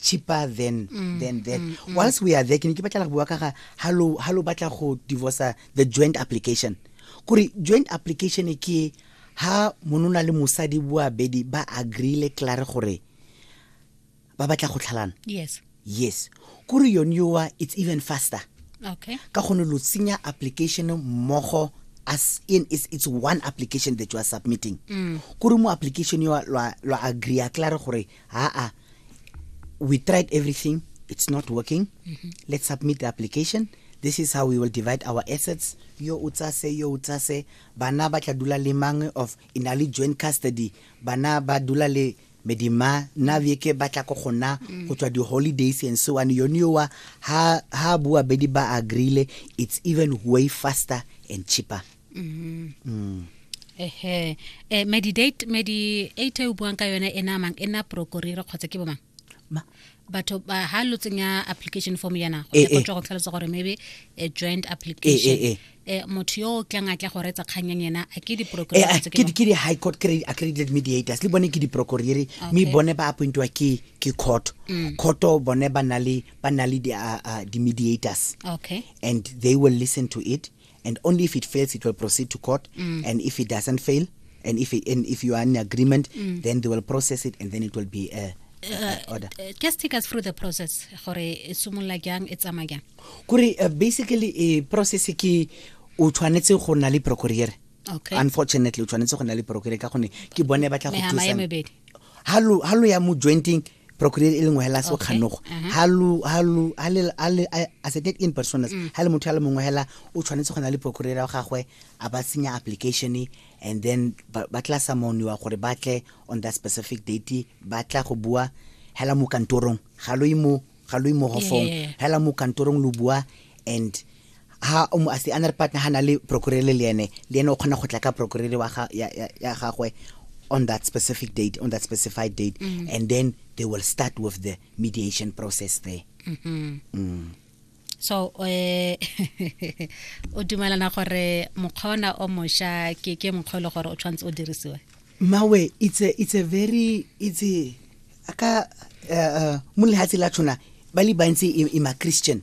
cheaper than than that whilst we are there ke ne ke batla go bua ka ga ha lo ha lo batla go divorce the joint application kore joint application e ke ha monona le mosadi boabedi ba agreele klare gore ba batla go tlhalana yes yes kore yone yowa it's even faster okay ka gone lo tsenya application mmogo as in it's, it's one application that you are submitting kore mo application yo lwa lwa agree a klare gore ha-a we tried everything it's not working mm -hmm. let's submit the application this is how we will divide our assets yo o tsa se yo o tsa se bana ba tla dula le mangwe of in a joint custody bana ba dula le medima na beke ba tla ko gona mm. go tswa di-holidays and so on yone yowa ha bua bedi ba agreele it's even way faster and cheaper mm-hmm. mm. ehe eh, medidate mediate o buang ka yone e namang e na prokorire kgotsa ke bomang batho ba ha lo tsenya application form yana go eh, go eh. tswa go tlhalosa gore maybe a joint application eh, eh motho yo o tlang a tla go retsa kganyang yena a ke di-procurerke di high court accredited mediators le bone ke di-procurere mme bone ba appointiwa ke ke court mm. courto bone ba na le ba na le di-mediators okay and they will listen to it and only if it fails it will proceed to court mm. and if it doesn't fail and if it, and if you are in agreement mm. then they will process it and then it will be uh, uh, order uh, just take us through the process gore e simolola jang e tsamaya jang kore uh, basically e process ke o tshwanetse go na le procureur okay. unfortunately o tshwanetse go na le procureur ka gone ke bone ba tla go thusa ha lo ya mo jointing procureur e lengwe hela se kganogo ha lu ha lu ha le ha le as a dead in personas mm. ha le motho ya le mongwe hela o tshwanetse go na le procureur wa gagwe a ba senya application and then ba tla sa moniwa gore ba tle on that specific date ba tla go bua hela mo kantorong ga lo imo ga lo imo hofong hela mo kantorong lo bua and ha o mo a se another partner ha na le procurele le ene le ene o kgona go tla ka procurele wa ga ya, ya, ya gagwe on that specific date on that specified date mm. and then they will start with the mediation process there mm -hmm. mm. so eh o dumelana gore mokgona o mosha ke ke mokgwa e le gore o tshwanetse o dirisiwe mawe it's a it's a very it's a aka uh, uh, mo lehatshe la tshwana ba le bantsi i, i ma christian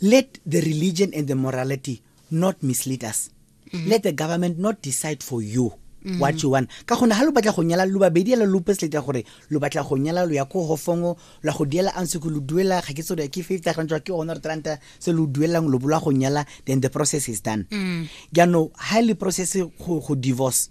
Let the religion and the morality not mislead us. Mm -hmm. Let the government not decide for you. Mm -hmm. what you want ka gone ga lo batla go nyala lo babedi ela lo pesleta gore lo batla go nyala lo ya ko hofongo la go diela a ntse ko lo duela ga ke tso ke fifty rand ke one re tranta se lo duelang lo bola go nyala then the process is done mm. jaanong ga le process go divorce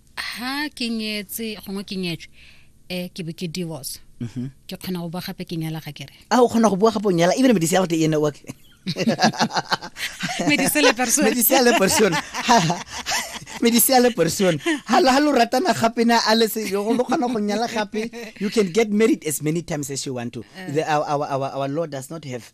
ha ke nyetse gongwe ke nyetswe um ke be ke divorce mhm. ke kgona go bua gape ke nyala ga kere a ah, o kgona go bua gape o nyala ebile medise ya gote e ene wa medise le person medise le person medise le person ha la lo ratana gape na a le se yo go kgona go nyala gape you can get married as many times as you want to eh. the, our, our, our, our lord does not have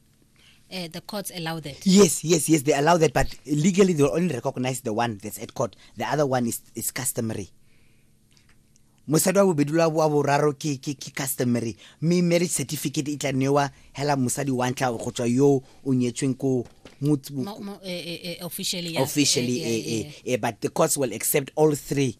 uh, the courts allow that. Yes, yes, yes, they allow that, but legally they only recognize the one that's at court. The other one is, is customary. mosadi wa bobedi lwa wa boraro ke ke ke customary mme marriage certificate e tla newa hela mosadi wa ntlha go tswa yo o nyetsweng ko eh, eh, eh, officially officially eh, eh, eh, but the courts will accept all three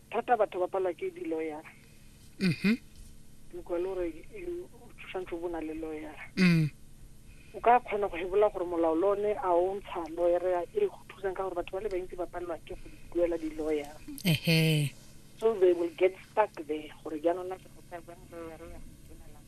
thata batho ba palwa ke di-lawyer mhm utlwa le gore you- o tshwanetse o bo o na le lawyer mm o ka kgona go hebola gore molao le one a o ntsha lawyer e go thusang ka gore batho ba le bantsi ba palelwa ke go duela di-lawyer ehe so they will get stuck there gore jaanong na ke go tsaya jang lawyer ya go dumelang.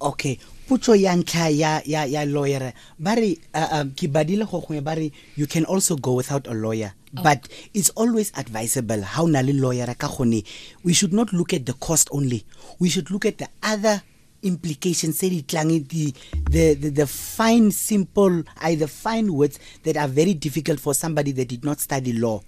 okay potso ya ntlha ya ya ya lawyer ba re uh, um, ke badile go gongwe ba re you can also go without a lawyer oh. but it's always advisable how na le lawyer ka gone we should not look at the cost only we should look at the other implications tse di tlang the, the, the, the fine simple I, the fine words that are very difficult for somebody that did not study law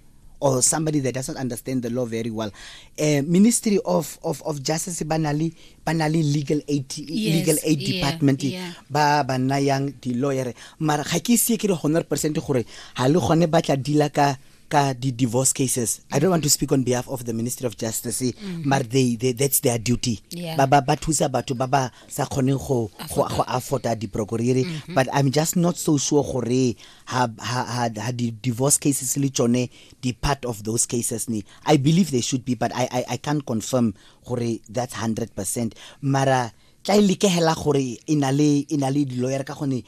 or somebody that doesn't understand the law very well uh, ministry of, of, of justice ba na le legal aid yes, legal aid yeah, department yeah. ba ba nayang di-lawyer mara ga ke sie ke re hundred percent gore ga le gone ba tla dila ka ka the divorce cases i don't want to speak on behalf of the ministry of justice mm -hmm. but they, they that's their duty yeah. ba ba ba thusa batho ba ba sa kgoneng go go afforda diprokoriri mm -hmm. but i'm just not so sure gore ha ha ha, ha di divorce cases le tsone di part of those cases ni i believe they should be but i i, I can't confirm gore that's 100% mara tla e lekegela gore e na le e na le di-lawyer ka gone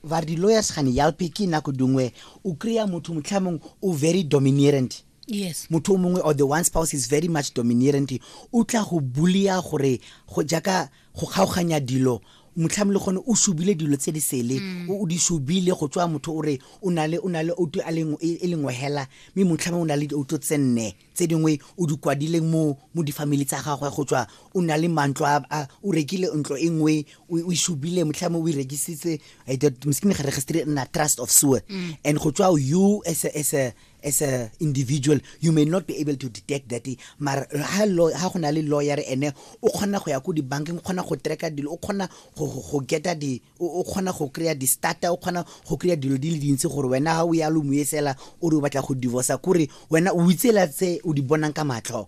ba re di-lawyers gane yalpe ke nako dingwe o kry-a motho motlhamong o very dominerant yes motho o mongwe or the one spouse is very much dominerant o tla go bulia gore go jaaka go kgaoganya dilo motlhami le gone o subile dilo tse di sele mm. o di subile go tswa motho o re o na le o na le outo a leng e, e lengwe hela mme motlhami o na le outo tse nne tse dingwe o di kwadileng mo mo difamily tsa gagwe go tswa o na le mantlo a o rekile ntlo e nngwe o e subile motlhami o e rekisitse eh, meskine ga registry nna trust of sewer mm. and go tswa you as a, as a, as a individual you may not be able to detect that mara ha go na le lawyer ene o kgona go ya ko dibankeng o kgona go tracka dilo o kgona go geta di o kgona go kry-a di-starter o kgona go kry-a dilo di le dintsi gore wena ga o ya lo moesela o re o batla go divorcea kore wena o itsela tse o di bonang ka matlho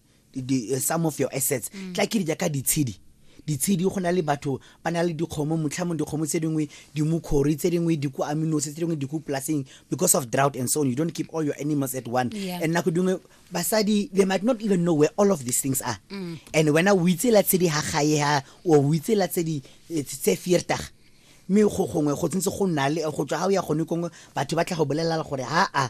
Eh, some of your assets mm. tla ke di jaaka ditshedi ditshedi go na le batho ba na le dikgomo motlhamong dikgomo tse dingwe dimokgori tse dingwe diku aminose tse dingwe diku polaseng because of drought and so on you don't keep all your animals at one yeah. and nako dingwe basadi they might not even know where all of these things are mm. and wena o itsela tse di ha gae ha o o itsela tse di eh, tse fiertaga mme go gongwe go tsentse go nna le go tswa ga o ya gone kongwe batho ba tla go bolelela gore ha a